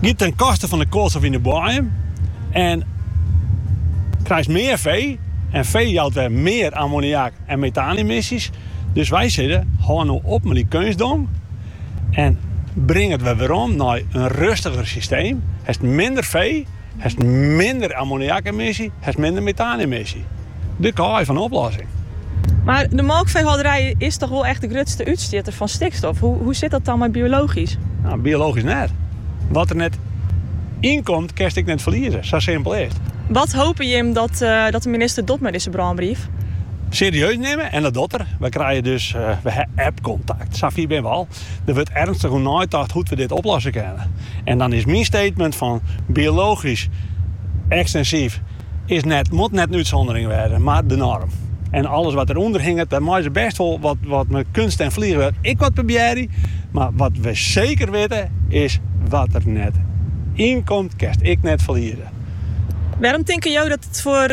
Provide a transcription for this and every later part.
Giet ten koste fan de koalstof yn de boaiem en krijst mear fee en fee jout wer mear ammoniak en metaanemissies. Dus wy sizze, hâld no op mei dy keunstdong en bring it wer werom nei in rustiger systeem. Hast minder fee. Hast minder ammoniakemissy, hast minder metaanemissy. De kaai fan de oplossing. Mar de molkfeehâlderij is dochs wol echt de grutste útstjitter fan stikstof. Hoe sit dat dan mei biologysk? Nou, biologysk net. Wat der net ynkomt, kinst ek net ferlieze. Sa simpel is it. Wat hope jim dat de minister docht mei dizze brânbrief? Serieus nimme en dat docht er. Wy krije dus, wy ha app-kontakt. Sa fier binne we al. Der wurdt ernstig oer neitocht hoe't we dit oplosse kinne. En dan is myn statement fan biologysk ekstensyf is net, moat net in útsûndering wêze, mar de norm. En alles wat der ûnder hinget, dêr meie se bêst wol wat, wat mei keunst en fleanwurk ek wat probearje. Mar wat we seker witte is, wat der net ynkomt, kinst ek net ferlieze. Wêrom tinke jo dat it foar.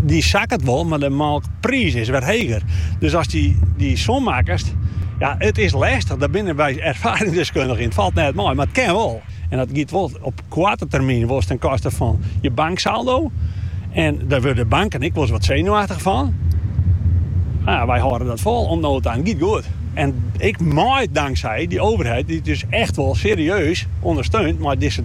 dy sakket wol, mar de molkpriis is wer heger. Dus ast dy som makkest, ja, it is lestich, dêr binne wy erfaringsdeskundige yn, it falt net mei, mar it kin wol. En dat giet wol op koarte termyn wolris ten koste fan je banksaldo en dêr wurde banken ek wolris wat senuachtich fan. Nou ja, wy hâlde dat fol oant no ta en it giet goed. En ek mei danksij dy overheid dy't ús echt wol serieus ûndersteunt mei dizze.